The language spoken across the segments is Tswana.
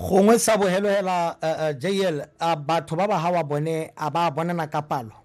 gongwe sa bogelo hela uh, eh, uh, eh, jl a uh, batho ba ba ga wa bone a ba bonana ka palo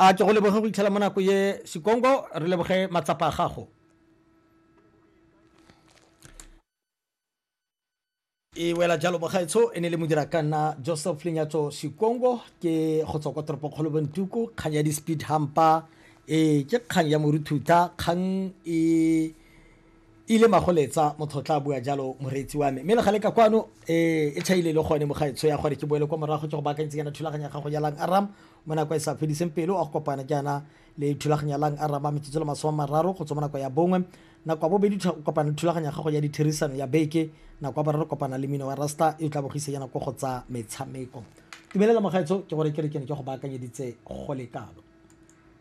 a ke go leboge go itlhela mo nako ye sekongo re leboge matsapa a gago e wela jalo bogaetsho e ne le modira ka nna joseph lenyatso sekongo ke go tswa kwa toropokgolo bontuku kgang ya di-speed hampa e ke kgang ya moruthuta kgang e e le magoletsa motho tla bua jalo moreetsi wa me mme legale ka kwano eh, e chaile le gone mogaetsho ya gore ke boele kwa morago ke go baakantse yana thulaganya gago ya lang aram mo nako e sa fediseng pelo a go kopana jaana le thulaganya lang aram ba metsotso le masome a mararo go tswa mo nako ya bongwe nako ya bobedi o kopana le thulaganya gago ya ditherisano ya beke nako ya boraro kopana le mino wa rasta e o tla bogisa yana ko go tsa metshameko tumelela mogaetsho ke gore ke re ke ne ke go baakanyeditse go lekalo